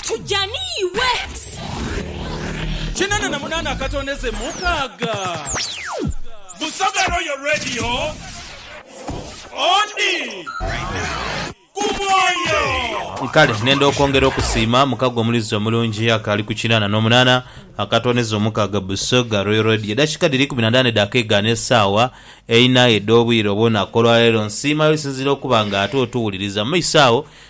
Tuja ni iwe. Kinana na munana akatondeze mukaga. Busoga Royal Radio odi ku mwoyo. Kale nenda okwongera okusiima mukago omulizi omulungi akaali ku kinana nomunana akatondeze omukaga Busoga Royal Radio. Edakika dhiri ikumi na ndhano edha keegaana esaawa eina edhobwire obwonaku olwaleero. Nsiima yo osinziire okuba nga ate otuwuliriza. Mumaiso agho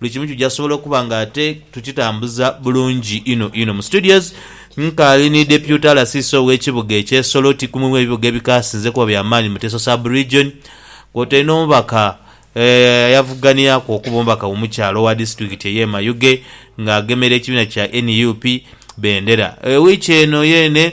Buli kimu kija sobola okuba nga ate tukitambuza bulungi inho inho. Mu studios nkaali ni Deputy RCC ow'ekibuga ekye Soroti kumu mu ebibuga ebikaasinze okuba bya maani mu Teso Sub-Region kwotaire n'omubaka ayavuganiraku okuba omubaka mu mukyalo owa disitulikiti eye Mayuge nga agemera ekibiina kya nup bendera wiiki eno yeene.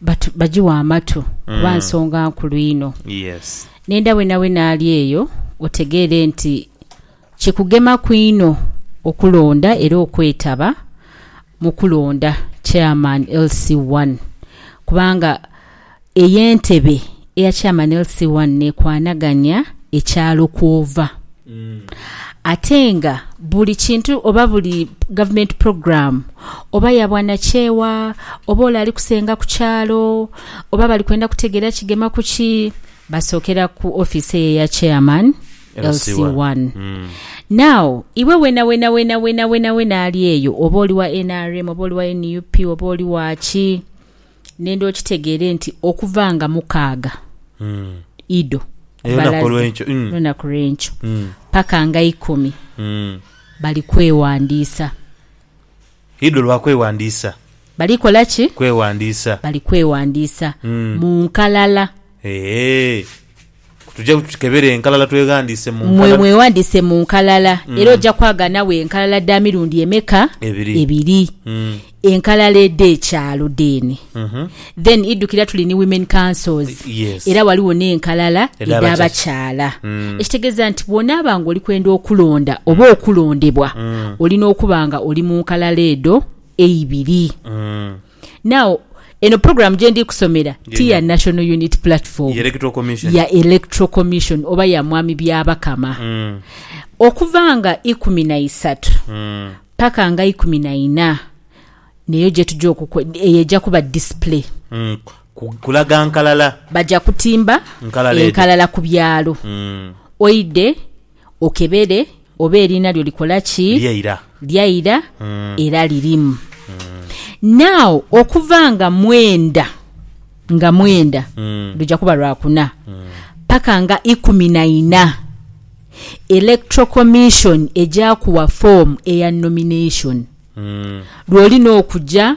batu, bagiwe amatu kuba mm. nsonga nkulu inho. Yes. Nenda wenawena ali eyo otegeere nti kikugemaku inho okulonda era okwetaba mu kulonda Chairman LC1 kubanga ey'entebe Eya Chairman LC one nekwanaganya ekyalo kwova ate nga buli kintu oba buli government program oba yabwanakyewa oba ole ali kusenga kukyalo oba bali kwenda kutegera kigema kuki basokera ku office eyo eya Chairman LC one. Now iwe wena wena wena wena wena wena ali eyo oba oli wa nrm oba oli wa nup oba oli waki Nenda okitegeere nti okuva nga mukaaga Ido balaze lunaku lw'enkyo paka nga ikumi bali kwewandiisa. Ido lwa kwewandiisa. Bali kola ki? Kwewandiisa. Bali kwewandiisa mu nkalala. Eehh. Tujja tukebere enkalala tweghandiise mu nkalala. Mwe mweghandiise mu nkalala era ojja kwagala nawe enkalala dha mirundi emeka? Ebiri. Ebiri. Enkalala edh'ekyalo dheene. Then idhukira tuli ni Women Councils Yes. era ghaligho n'enkalala Edha edha bakyala. Ekitegeeza nti bw'onaaba nga oli kwenda okulonda oba okulondebwa, olina okuba nga oli mu nkalala edho eibiri. Now, eno program gyendi kusomera ti ya National Unity Platform, ya Electoral Commission oba ya Mwami Byabakama. Mm. Okuva nga ikumi na isatu mm. paka nga ikumi na ina neyo gyetuja okukwa, eyo eja kuba display. Mm. Kulaga nkalala. Baja kutimba nkalala, enkalala ku byalo. Mm. Oide. Okebere oba eriina lyo likola ki? Lyaira. Lyaira era lirimu. Now okuva nga mwenda nga mwenda luja kuba lwa kuna paka nga ikumi na ina, Electoral Commission eja kuwa form eya nomination lwolina okuja.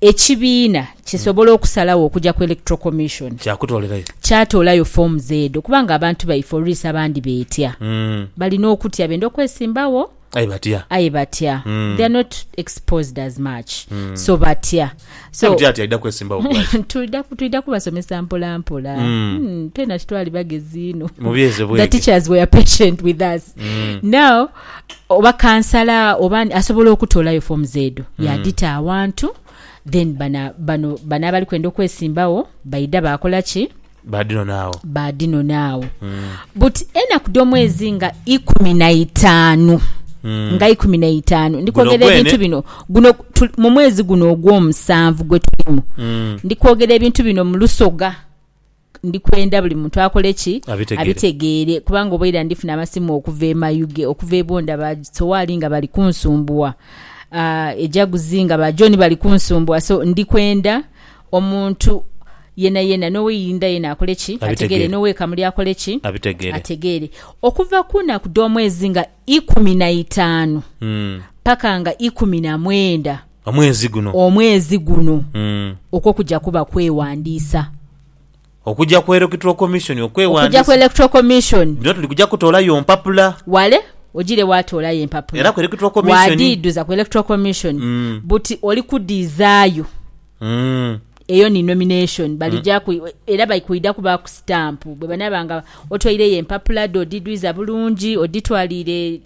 Ekibiina kisobola okusalagho okuja ku Electoral Commission kyatoolayo foomu z'edo kuba nga abantu baife oluisi abandi beetya. Balina okutya benda okwesimbagho aye batya. They are not exposed as much so batya. So twidha kubasomesa mpola mpola. Twena titwali bagezi inho. The teachers were patient with us. Now. oba kansala oba asobola okutolayo forms edho mm. yadita awantu then bana bano bana abali kwenda okwesimbawo baida bakola ki badinonaawo badinonaawo mm. but enaku domwezi nga ikumi na itaanu mm. nga ikumi na itaanu ndikwogera ebintu bino guno mu mwezi guno ogwomusanvu gwe tulimu mm. ndikwogera ebintu bino mulusoga ndi kwenda buli muntu akole ki? Abitegeere. Kubanga oba ira ndifuna amasimu okuva e Mayuge, okuva e Bunda ba Sowaali nga bali kunsumbuwa, ah, e Jaguzi nga ba John bali kunsumbuwa. So, ndi kwenda omuntu yenayena, n'ow'e Irinda yena akole ki? Abitegeere. N'ow'e Kamuli akole ki? Abitegeere. Ategeere. Okuva ku naku dh'omwezi nga. ikumi na itaanu paka nga ikumi na mwenda omwezi guno omwezi guno okwo kuja kuba kwewandiisa. Okuja ku Electoral Commission okwewandiisa. Okuja ku Electoral Commission. Bino tuli kuja kutoolayo mpapula. Wale ojirewo ate olayo empapula. Era ku Electoral Commission. Waadidhuza ku Electoral Commission buti oli kudhizaayo. Mm. Eyo ni nomination balija ku era bakwidha kubaaku sitampu bwe banaaba nga otwaireyo empapula dho odidhwiza bulungi odhitwaliire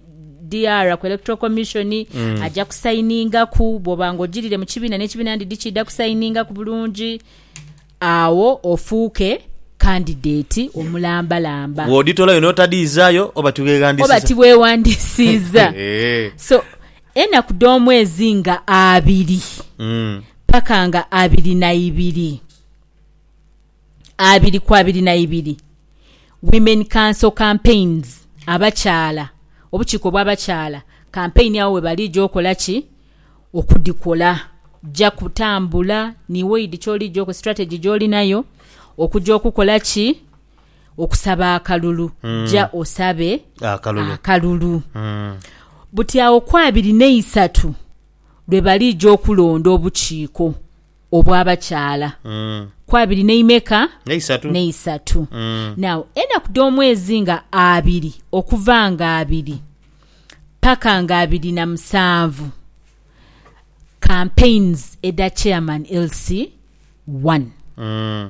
DR ku Electoral Commission aja kusayiningaku bw'oba nga ojirire mu kibiina n'ekibiina ndidhi kiidha kusayiningaku bulungi agho ofuuke kandideti omulambalamba Bw'odhitolayo n'otadhiizaayo oba oba tiweeghandisiiza. tibweghandisiiza. Eehh. So, Enaku dh'omwezi nga abiri paka nga abiri na ibiri abiri ku abiri na ibiri Women Council Campaigns Abakyala Obukiiko bw'abakyala kampeyini agho webalija okola ki? Okudhikola. Ja kutambula ni waidi ky'olija, strategy gy'olinayo okuja okukola ki? okusaba akalulu, ja osabe Akalulu. akalulu. Mm. Buti agho ku abiri n'eisatu lwe baliija okulonda obukiiko obw'abakyala, Mm. ku abiri n'eimeka? N'eisatu. N'eisatu. Mm. Now, enaku dh'omwezi nga abiri okuva nga abiri paka nga abiri na musanvu, campaigns edha chairman LC one. Mm.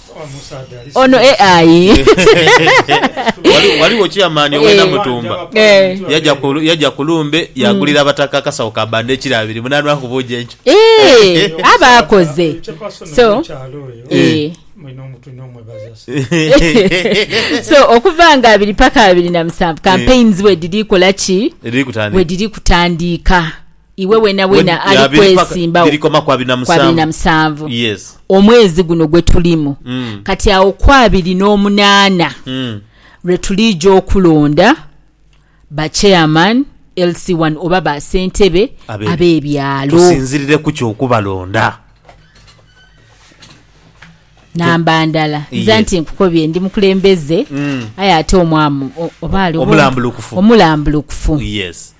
Ono e ayi. Ghaligho chairman owe Namutumba yaja ku lumbe yagulira mm. abataka akasawo ka banda ekiro abiri munanwa kubuuja enkyo. Eh, aba akoze. So eh. so okuva nga abiri paka abiri na musanvu eh. campaigns we diri kola ki? Diri kutandiika. We diri kutandiika. Iwe wenawena ali kwesimba wo kwa abiri na musanvu omwezi guno gwe tulimu mm. kati awo ku abiri n'omunaana mm. lwe tuliija okulonda ba chairman LC1 oba ba sentebe ab'ebyalo tusinzirire ku ky'okubalonda namba ndala nze yes. nti nkukobye ndi mukulembeze mm. aye ate omwamu oba ali omulambulukufu omulambulukufu yes.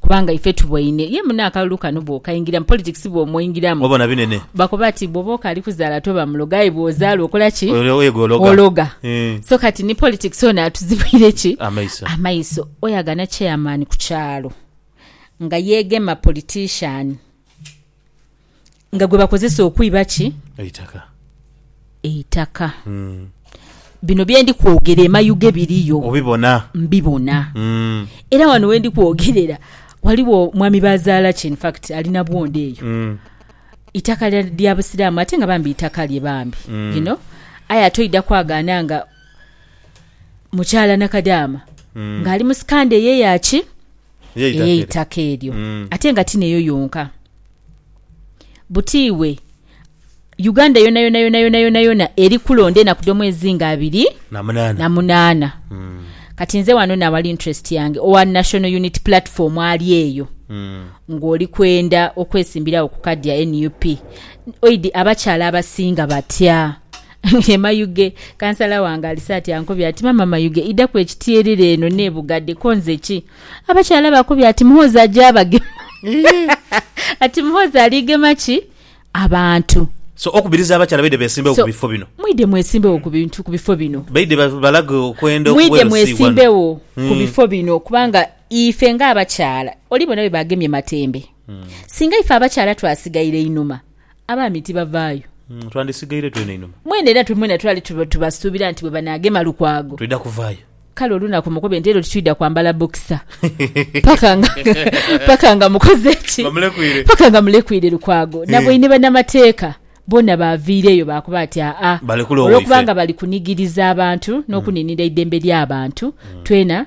Kubanga ife tubwoine. Ye mune akalulu kano bw'okaingira, mu politics bw'omwingiramu. Obona binene. Bakoba ati bwoba okaali kuzaala toba muloga aye bw'ozaala okola ki? Ologa. So kati ni politics ono atuzibwire ki? Amaiso. Oyagana chairman ku kyalo nga yeegema politician. nga gwe bakozesa okwiba ki? Eitaka. Eitaka. Bino bye ndi kwogera e Mayuge biriyo. Obibona? Mbibona. Era wano we ndi kwogerera waliwo mwami Bazaalaki in fact ali na bwondo eyo. Itaka lya, lya Busiraamu ate nga bambi itaka lye bambi. You know? Aye ate oidha kwagaana nga mukyala Nakadaama ng'ali mu sikandha eyo eya ki? ey'eitaka eryo mm. ate nga ti neyo yonka butiiwe uganda yona yona yona yona yona yona eri kulonda enaku dh'omwezi nga abiri na munaana mm. kati nze wano nawali interest yange owa national unit platform ali eyo mm. ng'oli kwenda okwesimbirawo ku kadi ya nup oidi abakyala abasinga batya Ye Mayuge, kansala wange alise ati ankobye ati maama Mayuge idaku ekityerere eno nebugade konze ki? Abakyala bakubye ati Muhoozi aja abagema ati Muhoozi aligema ki? Abantu. So okubiriza abakyala baide besimbewo ku bifo bino. Mwide mwesimbewo ku bintu ku bifo bino. Baide balage okwenda okuwera Mwide mwesimbewo ku hmm. bifo bino kubanga ife nga abakyala oli bona bwe bagemye matembe. Hmm. Singa ife abakyala twasigaire inuma Abaami tibavaayo. Twandisigaire twena einhuma. Mwene era twe mwena twali tubasuubira nti bwe banaagema Lukwago. Twidha kuvaayo. Kale olunaku mukobe nti ero titwidha kwambala bokisa paka nga paka nga mukoze ki? Nga mulekwiire. Paka nga mulekwiire Lukwago. Nabwei ni banamateeka boona baaviireeyo baakoba ati aa, Balekule owaife. Olwokubanga bali kunigiriza abantu n'okuniinira eidembe ly'abantu, twena.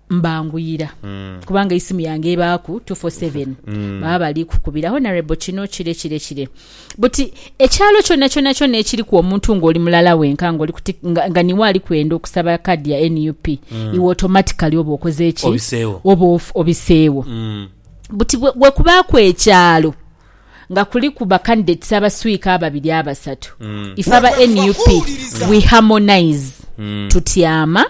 mbanguyira kubanga eisimu yange ebaaku 247 baba bali kukubira Honourable kino kire kire kire but ekyalo kyonakyona kyona ekiriku omuntu nga oli mulala wenka nga oli ku tik nga, nga niwe ali kwenda okusaba card ya nup iwe automatically oba okoze ki Obiseewo. oba of- obiseewo buti bwe- bwekubaaku ekyalo nga kuliku ba candidates abaswiika ababiri abasatu ife aba nup we harmonise tutyama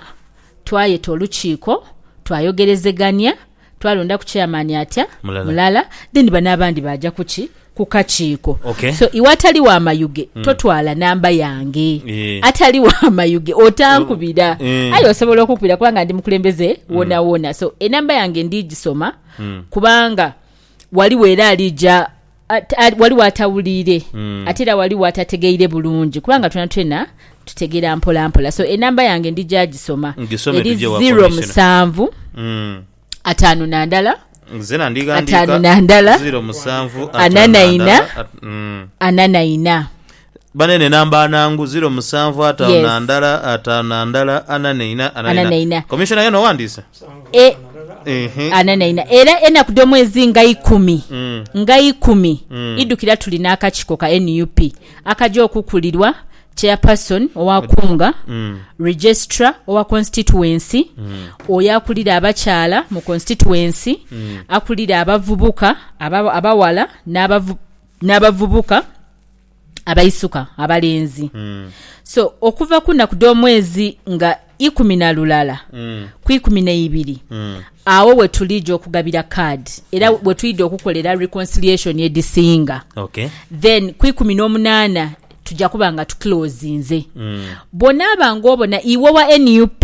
Twayeta olukiiko, twayogerezegania, twalondaku chairman atya, Mulala. mulala, then bano abandi baaja kuki? ku kakiiko. Okay. So iwe atali wa Mayuge totwala namba yange. Eh. Atali wa Mayuge otankubira. Eh. Aye osobola okukubira kubanga ndi mukulembeze wonawona. So enamba yange ndigisoma kubanga waliwo era alija Ghaligho atawuliire ate era ghaligho atategeire bulungi kubanga twena twena tutegera mpola mpola so enamba yange ndija gisoma eri zero musanvu mm. atano nandala atano nandala anana ina mm. anana ina Banene namba ana ngu ziro musanvu ataanu na ndala ataanu na ndala ana neina ana neina. Commissioner yena owandiise? E, ana neina era enaku dh'omwezi nga ikumi mm. nga ikumi mm. idukira tuli n'akakiko ka nup akaja okukulirwa chairperson owakunga mm. registra owa constituency mm. oyo akulira abakyala mu constituency mm. akulira abavubuka abawala n'abavubuka abaisuka abalenzi mm. so okuva kunaku dh'omwezi nga ikumi na lulala mm. ku ikumi n'eibiri mm. awo wetulija okugabira kaadi era mm. wetwidha okukolera reconciliation edhisinga okay. then ku ikumi n'omunaana tujja kuba nga tukilozinze mm. bwonaaba ng'obona iwe wa nup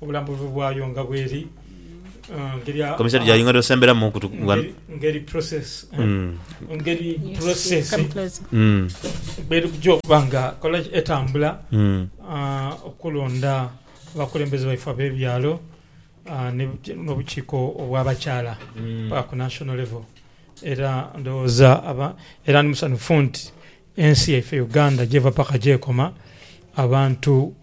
Obulambuzi bwayo nga bweri ngeri Komiseri gyayongera osemberamu okutu- nga- ngeri- ngeri process eh, Mm. ngeri Yes, yes, process come closer. Mm. bweri kuja okuba nga kola ki? etambula Mm. ah, okulonda abakulembeze baife ab'ebyalo ah, ne buki- n'obukiiko obw'abakyala paka ku national level era ndowooza aba era ndi musanhufu nti ensi yaife uganda gyeva paka gyekoma abantu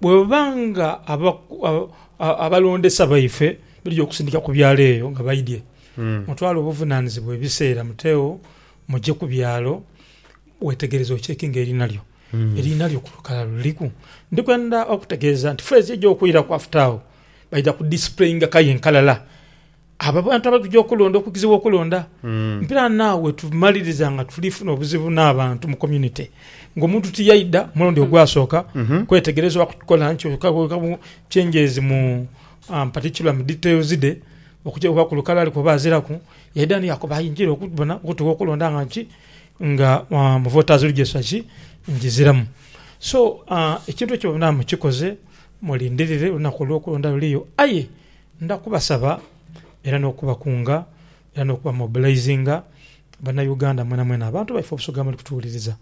Bwebuba nga abalondesa baife baidhi okusindika ku byalo eyo nga baidhie, mutwale obuvunanizibwa ebiseera muteegho muje ku byalo wetegereze okyekinge eriina lyo. Eriina lyo ku lukala luliku? Ndi kwenda okutegeeza nti phrase eja okwiraku after agho baidha ku displayinga kaye nkalala. Abo abantu abatugya okulonda okugezebwa okulonda, mpira naawe tumaliriza nga tuli funa obuzibu n'abantu mu community ng'omuntu tiyaidha mulundi ogwasooka kwetegereza oba kukola nti changes mu particular mu details dhe okugya oba ku lukala aliku oba aziraku yaidha ni yakoba aye njira okubona okutuwa okulonda nga nki nga mu voters register ki ngiziramu. So ekintu ekyo bamwine mukikoze mulindirire olunaku olw'okulonda luliyo aye Ndha kubasaba era n'okubakunga era n'okubamobilizinga Bannauganda mwenamwena, abantu baife Obusoga muli kutuwuliriza,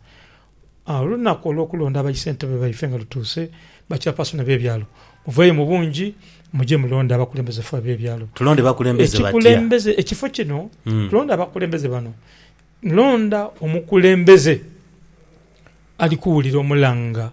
olunaku olw'okulonda aba issentebe baife nga lutuuse, ba chairperson ab'ebyalo muveeyo mu bungi muje mulonde abakulembeze fe ab'ebyalo. Tulonde bakulembeze batya? Ekikulembeze, ekifo kino tulonde abakulembeze bano, nlonda omukulembeze ali kuwulira omulanga.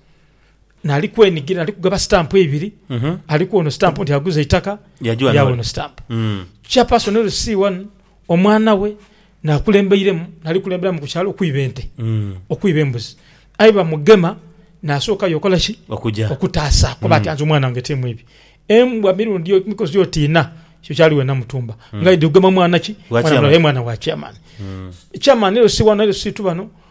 nali kwenigira nali kugaba stamp ibiri Mhm. aliku ono stamp nti aguza eitaka Yajua yawa nole. ono stamp Mm. chairperson ori C1 omwana we nakulembeiremu nali kulemberamu ku kyalo okwiba ente Mm. okwiba embuzi aye bamugema nasooka yokola ki Okuja. okutaasa kuba Mm. atyanze omwana wange timu ibi embwa mirundi o- mikozi oti ina ekyo kyali wena mutumba Mm. nga idhi kugema mwana ki Wa mwana chairman. mulala, aye mwana wa chairman Mm. chairman LC1 LC2 bano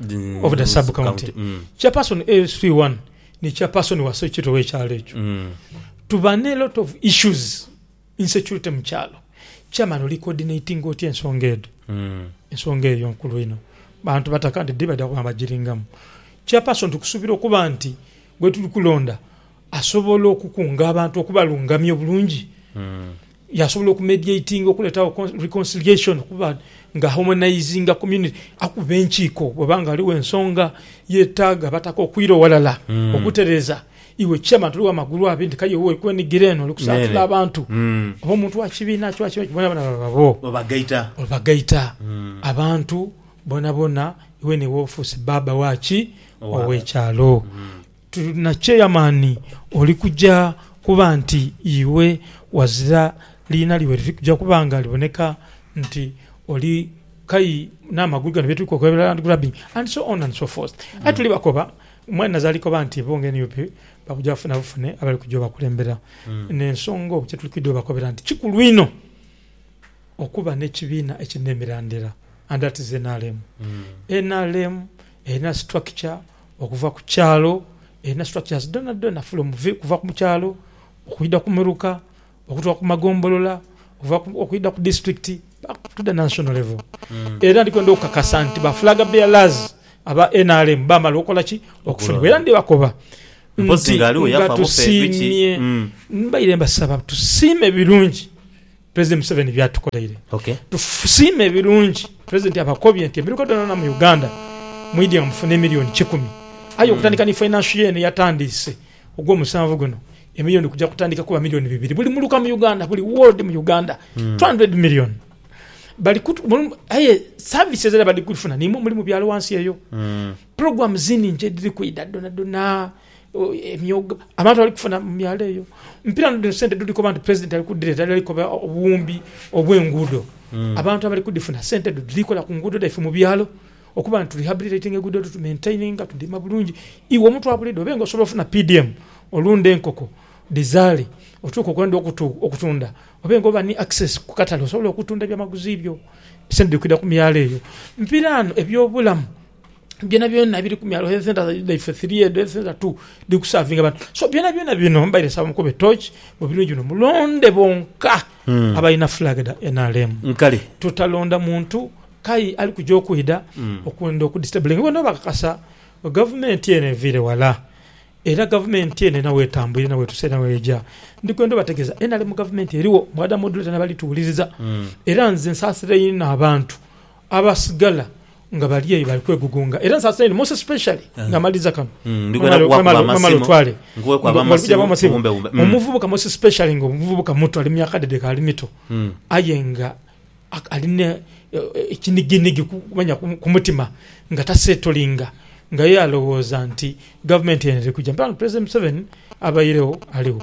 Mm, of the mm, sub county county, mm. chairperson AS31 ni chairperson wa sekitole wekyalo ekyo Mm. tuba ne lot of issues insecurity mu kyalo chairman oli coordinating otya ensonga edo Mm. ensonga eyo nkulu ino bantu bataka nti dibada kuba bagiringamu chairperson tukusubira okuba nti gwetuli kulonda asobola okukunga abantu okubalungamya obulungi Mm. Yasobola oku mediatinga okuletagho reconciliation okuba nga harmonizinga community akuba enkiiko bweba nga ghaligho ensonga yetaga abataka okwira ghalala okutereza. Iwe chairman toli wamagulu abiri nti kaye woli kwenigira eno oli kusaatula abantu oba omuntu wakibiina kyo oba kiki bonabona baba bo obagaita abantu bonabona iwe niwe ofuuse baba waki owekyalo. Tuli na kyeyamani oli kuja kuba nti iwe wazira liina lyo weriri kuja kuba nga liboneka nti oli kai n'amagulu gano byetuli kwoka ebirala and grabbing and so on and so forth. Aye tuli bakoba mwene naze ali koba nti bo nga nup bakuja bafuna bufune abali kuja obakulembera n'ensonga oku kyetuli kwidha obakobera nti kikulu inho okuba n'ekibiina ekiri n'emirandira and that is nrm. Nrm erina structure. Okuva ku kyalo erina structures dhonadhona from kuva ku kyalo okwidha ku muruka okutuka ku magombolola okwidha ku district paka to the national level era ndi kwendha okukakasa nti ba flag bearers aba nrm bamala okola ki? Okufunibwa era ndi bakoba nti nga tusiimye mbaire mbasaba tusiime birungi. President Museveni byatukoleire tusiime birungi president abakobye nti emiruka dhonadhona mu Uganda mwidye nga mufuna emiliyoni kikumi aye okutandika ni financial year eno eyatandiise ogwomusanvu guno emiliyoni kuja kutandika kuba miliyoni bibiri buli muluka mu Uganda buli ward mu Uganda 200 million bali aye services era bali kufuna nimwo muli mu byalo wansi eyo program ziningi edhiri kwidha dhonadhona. emyoga abantu bali kufuna mu myalo eyo. Mpira no dhino sente dhuli koba nti president ali ku dhileta ali koba obuwumbi obwe nguudo hmm. abantu abali kudhifuna sente edho dhili kola ku nguudo dhaife mu byalo okuba nti rehabilitating good to maintain tu dhima bulungi iwe omuntu abulidho obe nga osobola ofuna PDM olunde enkoko dhizale otuke okwenda okutunda obe nga oba ni access ku katale osobola okutunda ebya maguzi byo sente dhili kwidha ku myalo eyo. Mpira no ebyo bulamu byona byona biri ku myalo, health centre dhaife three edho health centre two dhiri ku savinga bantu. So byona byona bino mbaire nsaba mukube torch mu birungi bino mulonde bonka hmm. abalina flag dha NRM. Nkale. Tutalonda muntu kai ali kuja okwidha hmm. okwenda okudistabling bona bakakasa gavumenti eno eviire wala era gavumenti eno ena wetambwire na wetuse na weja ndi kwenda obategeeza NRM gavumenti eriwo mwada modulator nabalituwuliriza hmm. era nze nsasira inho abantu Abasigala nga bali eyo bali kwegugunga era nsasira inho most especially nga maliza kano mwemale otwale omuvubuka most especially nga omuvubuka muto ali myaka dhe dhekali mito aye nga ali ne kiniginigi manya kumutima nga tasetolinga nga ye alowoza nti gavumenti eno eri kuja mpola nga president Museveni abairegho aligho.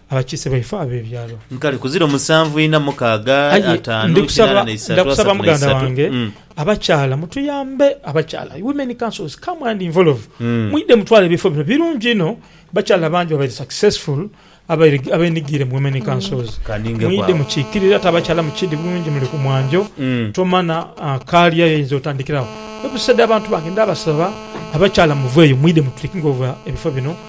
abakiise baife ab'ebyalo. Kale ku ziro musanvu ina mukaaga Aye ataanu kinaana na isatu asatu na isatu. Abakyala mutuyambe abakyala women councils come and involve mwidhe mutwale ebifo bino birungi inho bakyala bangi babaire successful abenhigiire mu women councils mwidhe mukikirire ate abakyala mukidhi bulungi muli ku mwanjo tomanha kaalya yoyinza otandhikiragho. Ebiseedha bantu bange ndhabasaba abakyala muveeyo mwidhe mu taking over ebifo bino.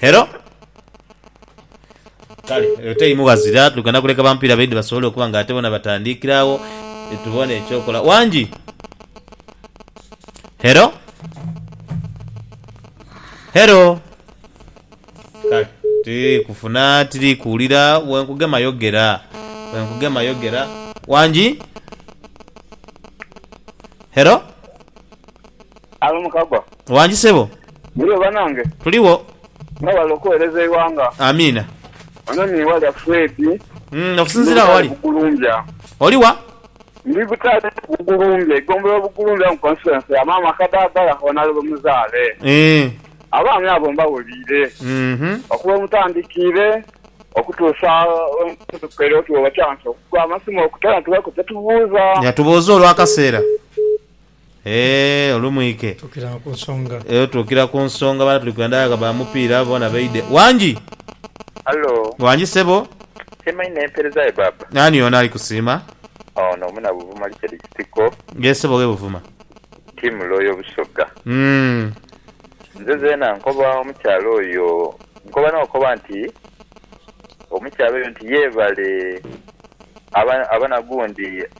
Hello? Kale eyo teimu ghazira, tugenda kuleka bamupiira baidhi basobole okuba nga ate bona batandiikira agho tubone ekyokola. Wangi? Hello? Hello? Kale tiri kufuna tiri kuwulira, bwenkugema yogera, bwenkugema yogera. Wangi? Hello? Alo Mukagwa. Wangi sebo. Muliwo banange? Tuliwo. Nga wali okuwereza eighanga. Amiina. Ono ni Walya Fred. Umm okusinzira awo wali? Oli wa? Ndi Butale Bugulumbya, eigombolola Bugulumbya mu constituency ya Maama Kadagala honale wemuzaale. Eeh. Abaami abo mbawuliire uhmm. Okuva wemutandikiire okutuusa wemutuukire oti webakyansa okugwa amasimu okuta netubaku kyetubuuza. Yatubuuza olwakaseera. Eeh olumwike eyo tuukira ku nsonga bano tuli kwenda ghagho ba mupiira abo boona baidhe. Wangi! Hallo. Wangi sebo. Siima inho empeereza yo baaba. Ani ono ali kusiima? Ono muna Buvuma Richard Kitiko. Yee sebo owe Buvuma. Team Loyal Busoga. Uhmm. Nze zeena nkoba omukyala oyo, nkoba n'okoba nti omukyala oyo nti yebale aba aba na gundi.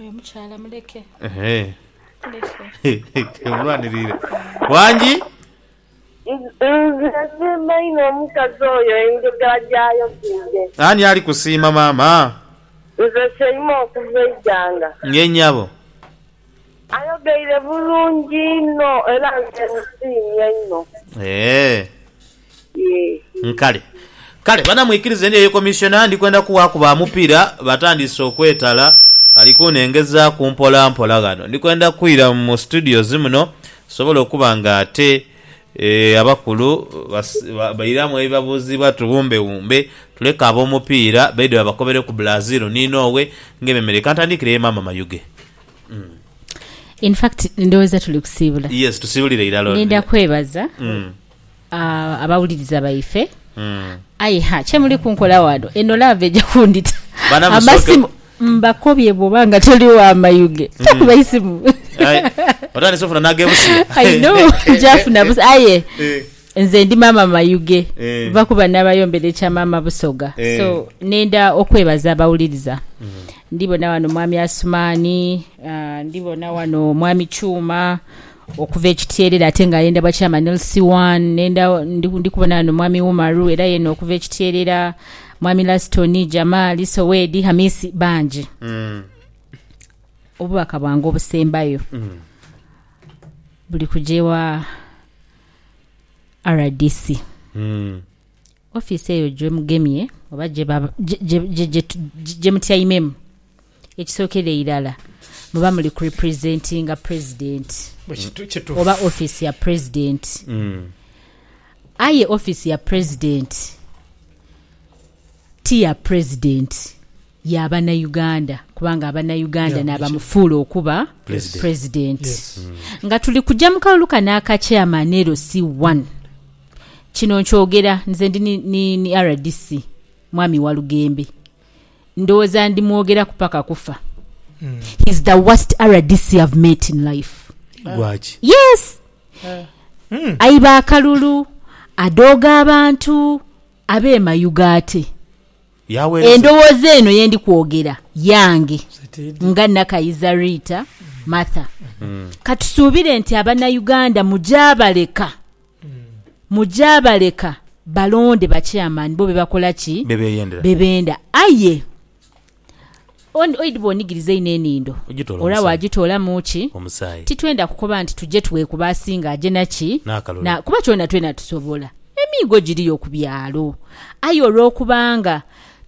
Oyo omukyala muleke. Ehe. Omulwanirire. Wangi? Nze nsiima inho omukazi oyo enjogera gy'ayogeire. Ani ali kusiima maama? Nze Sheima okuva Iganga. Ye nnyabo. Ayogeire bulungi inho era nze musiimye inho. Eeh. Nkale. Kale bana mwikirize ndyeyo komisyona ndi kwenda kuwaaku ba mupiira batandiise okwetala. Ali kunengezaaku mpola mpola ghano. Ndi kwenda kwira mu studios muno nsobole okuba nga ate abakulu bairamu ebibabuuzibwa tuwumbewumbe tuleke ab'omupiira baidhe babakobere ku Brazil ni Norway ng'ememereire. Ka ntandiikireyo Maama Mayuge. In fact ndowooza tuli kusiibula. Yes, tusiibulire irala. Ninda kwebaza abawuliriza baife. Aye ha, kye muli kunkola wano? Eno love eja kundita Bana Musooke- amasimu mbakobye bwoba nga toli wa mayuge takuba isimu Aye, otandise ofuna n'agebusiya. I know nkyafuna busa aye Eh. nze ndi maama mayuge Eh. va kuba nabayombera ekya maama busoga Eh. so nenda okwebaza abawuliriza ndibona wano mwami asumani ah, ndibona wano mwami kyuma Okuva ekityeerere ate nga ayenda bwa chairman LC one nenda ndi kubona ghano mwami Umaru era yena okuva ekityeerera mwami Lastoni, Jamali, Sowedi, Hamisi bangi. Obubaka bwange obusembayo buli kuja ewa rdc. Office eyo gyemugemye oba gye gye gye gye mutyaimemu. Ekisookera irala muba muli ku representinga President oba office ya President. Aye office ya President ti ya President, ya Banauganda kubanga Abanauganda n'abamufuula okuba President. Nga tuli kuja mu kalulu kano aka Chairman LC I, kino nkyogera nze ndi ni rdc Mwami Walugembe, Ndowooza ndimwogeraku paka kufa. He's the worst rdc I've met in life. Lwaki? Yes! Aiba akalulu, adooga abantu, abe mayuge ate. Yawereza. Endowooza eno yendi kwogera yange nga Nakayiza Rita Martha. Katusuubire nti abanauganda mujabaleka. Muja baleka balonde ba chairman bo byebakola ki? Byebenda. Aye oidhba onigiriza inho enindo olwa wajitolamu ki? Titwenda kukoba nti tuje twekuba asinga aje na ki? Na kuba kyona twena tusobola. Emiigo giriyo ku byalo. Aye olwokubanga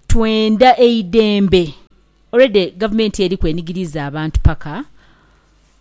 twenda eidembe, already gavumenti eriku enigiriiza abantu paka.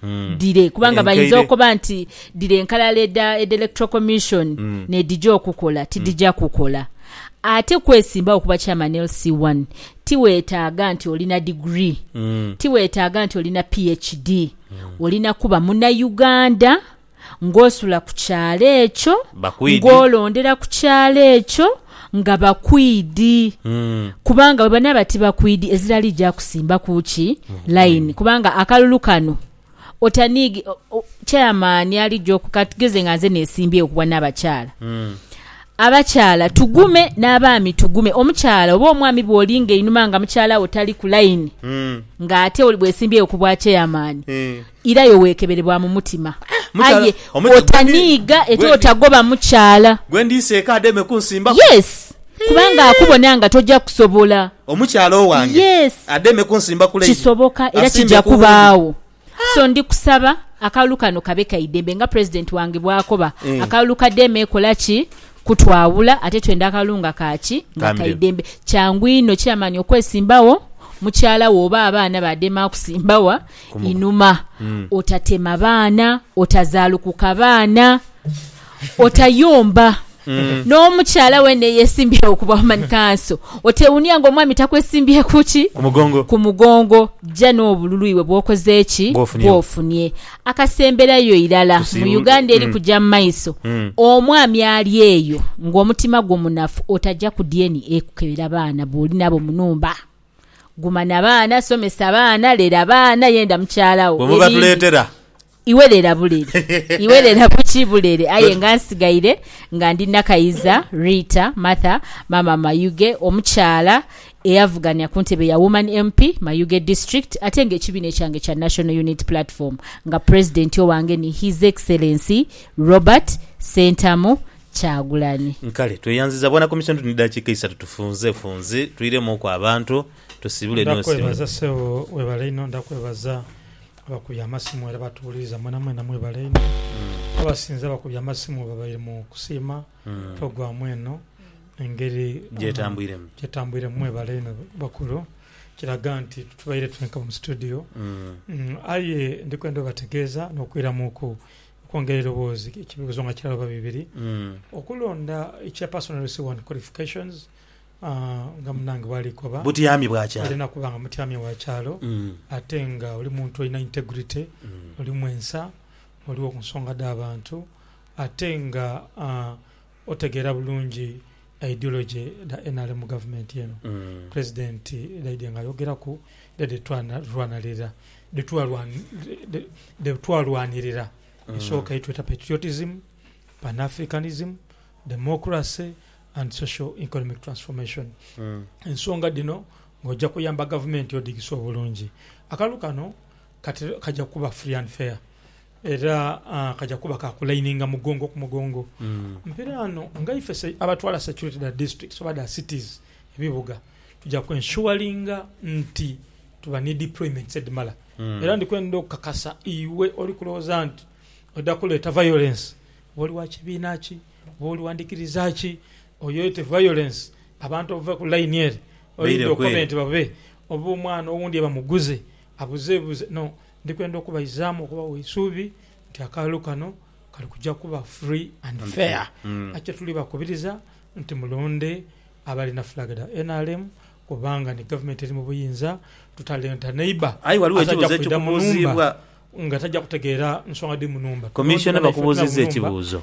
Hmm. Dire kubanga bayinza okoba nti dire enkalala eda eda electoral commission mm. nedija okukola tidija mm. kukola ate kwesimbawo kuba chairman LC1 tiwetaaga nti olina degree mm. tiwetaaga nti olina PhD mm. olina kuba muna Uganda ng'osula ku kyalo ekyo, ng'olondera ku kyalo ekyo nga bakwidi. Kubanga bwe banaaba tibakwidi, ezira liija kusimbaku ki layini. Kubanga akalulu kano otaniigi, chairman alija oku, ka tugeze nga nze nesimbyewo ku bwanaabakyala. Abakyala tugume, n'abaami tugume. Omukyala oba omwami bw'oli ng'einhuma nga mukyala wo tali ku layini, ng'ate bwesimbyewo ku bwachairman, Irayo weekebere bwa mu mutima, aye otaniiga ete otagoba mukyala. Yes, kubanga akubona nga toja kusobola. Yes, kisoboka era kija kubaagho. So ndi kusaba akalulu kano kabe ka idembe nga President wange bwakoba. Akalulu ka Dema ekola ki kutwawula ate twenda akalulu nga ka ki? Nga ka idembe. Kyangu inho, chairman, okwesimbagho, mukyala wo oba abaana ba Dema akusimba wa? inhuma, otatema baana, otazaalukuka baana, otayomba n'omukyala weena eyeesimbyewo ku bwamani kanso. Oteewuunia ng'omwami takwesimbye ku ki? Ku mugongo. Ja n'obululu iwe bw'okoze ki? Bw'ofunie. Akasemberayo irala, mu Uganda eri kuja mu maiso, omwami ali eyo ng'omutima gwo munafu, otaja ku dyeni ekukebera baana b'oli nabo mu nhumba. Guma na baana, somesa baana, lera baana, yenda mukyala wo. Bwe muba Ebindi, tuleetera. Iwe lera bulere. Iwe lera buki? Bulere. Aye nga nsigaire nga ndi Nakayiza, Rita, Martha, Maama Mayuge, omukyala eyavugania ku ntebe ya Woman MP, Mayuge District, ate nga ekibiina ekyange kya National Unity Platform nga President owange ni His Excellency Robert Ssentamu Kyagulanyi. Kale tweyanziza bwana komisoni tuli ni dakiika isatu tufunze funzi twiremu oku abantu tusibule ni osibule. Ndakwebaza sebo webale inho ndakwebaza abakubye amasimu era batuwuliriza mwena mwena mwebale inho abasinze abakubye amasimu babaire mu kusiima program eno engeri Gyetambwiremu. gyetambwiremu mwebale inho bakulu kiraga nti titubaire twenka mu studio aye ndikwenda obategeeza nokwiramuku Okwongera eiroboozi, ekibuuzo nga kirala oba bibiri, okulonda ekya personal receiver and qualifications nga munange bwali koba. Butyami bwa kyalo. Olina kuba nga mutyami wa kyalo ate nga oli muntu alina integrity, oli mwensa, oli wokunsonga dha bantu ate nga otegeera bulungi. Ideology dha nrm gavumenti eno president dhaidye nga ayogeraku era dhetwalwanalira dhetwalwanirira esooka yetweta patriotism, pan Africanism, democracy and social economic transformation. Ensonga dhino ng'oja kuyamba gavumenti odhigise obulungi. Akalulu kano kaja kuba free and fair. Era kaja kuba ka kulaininga mugongo ku mugongo. Mpiraano nga ife abatwala security dha districts oba dha cities, ebibuga, tuja ku ensuringa nti tuba ni deployments edhimala. Era ndi kwendha okukakasa iwe oli kulowooza nti oidha kuleeta violence, oba oli wa kibiina ki, oba oli wa ndhikiriza ki, oyoyete violence abantu obave ku line ere oidhe okobe nti babe, oba omwana owundi ye bamuguze abuzebuze. No, Ndi kwenda okubaizaamu okubawa eisuubi nti akalulu kano kali kuja kuba free and fair. Nakyo tuli bakubiriza nti mulonde abalina flag dha nrm kubanga ni gavumenti eri mu buyinza, tutalenta neighbour Aye ghaligho aze aja ekibuuzo kwidha mu nhumba ekikubuuziibwa. nga taja kutegeera nsonga dhiri mu nhumba. Tulonde Commissioner banaiffe tuli abe mu bakubuuzizza nhumba ekibuuzo.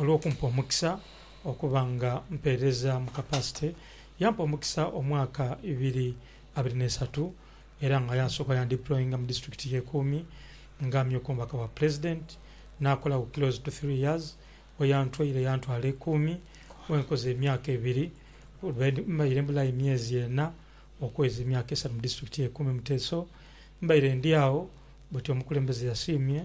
olw'okumpa omukisa okuba nga mpeereza mu kapasite. Yampa omukisa omwaka ibiri abiri n'esatu era nga yansooka yandiployinga mu disiturikiti y'e Kuumi nga amyuka omubaka wa Pulezidenti. Naakolagho close to three years. We yantwaire yantwala e Kuumi we nkoze emyaka ebiri. Mbaire mbulayo emyezi ena okuweza emyaka esatu mu disiturikiti y'e Kuumi Muteeso. Mbaire ndi agho buti omukulembeze yasiimye.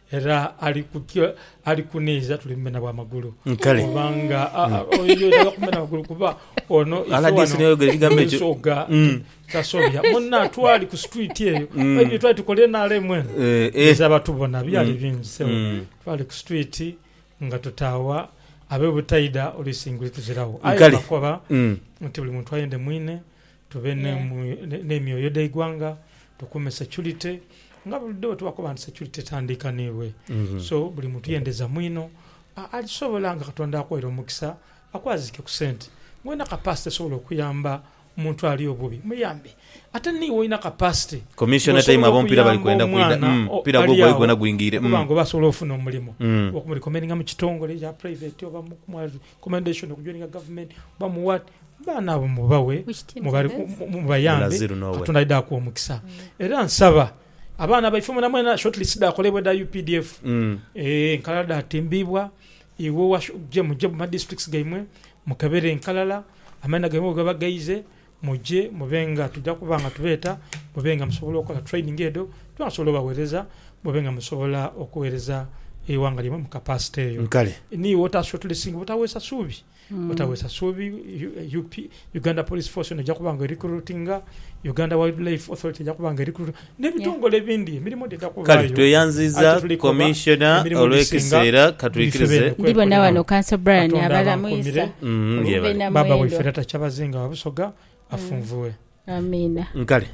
Era ali kutyo ali kuniiza tuli mumenha bwa magulu. Kale. Kubanga a- a- oyo taidha kumenha magulu kuba ono ife RDC wano n'eyogera ekigambo ekyo. ensogha Mm. tasobya. Munna twali ku street eyo. Mm. Ebyo twali tukola NRM eno. Eh, eh. Biza batubona byali Mm. bingi sebo. Mm. Twali ku street nga tutaawa abe butaidha oluisi nguli tuzirawo. Aye Kale. bakoba Mm. nti buli muntu ayende mwine Tube n'emyoyo dha igwanga, tukuume security nga bulido bwetubakoba nti security etandiikanibwe so buli muntu yendeza mwino alisobola nga Katonda akwaire omukisa akwazike ku sente nga olina capacity esobola okuyamba omuntu ali obubi muyambe ate niiwe olina capacity nga osobola okuyamba omwana ali agho okuba nga oba asobola ofuna omulimo oba okumu recommendinga mu kitongole ekya private oba commendation okujoininga government oba mu what baana abo mubawe mubayambe katonda aidha akuwa omukisa era nsaba abaana baife mwena mwena short list dhakolebwa edha updf eeh enkalala dhatimbibwa iwe muje mu ma districts gaimwe mukebere enkalala amaina gaimwe bwegaba gaize Muje mube nga tuja kuba nga tubeeta, mube nga musobola okola training edho tuba nga tusobola obawereza mube nga musobola okuwereza eighanga lyaimwe mu capacity eyo. Kale. Ni iwe ota shortlisting butaweesa suubi, butaweesa suubi. UP, Uganda Police Force yona eja kuba nga erecruitinga, Uganda Wildlife Authority eja kuba nga erecruitinga. n'ebitongole ebindi emirimo dhidha kubaayo. Kale tweyanziiza Commissioner olw'ekiseera katwikirize. Ndibona wano Council Brian abala mwisa mube na mwendo. Baba waife Lata Kyabazinga wa Busoga afunvue. Amiina. Nkale.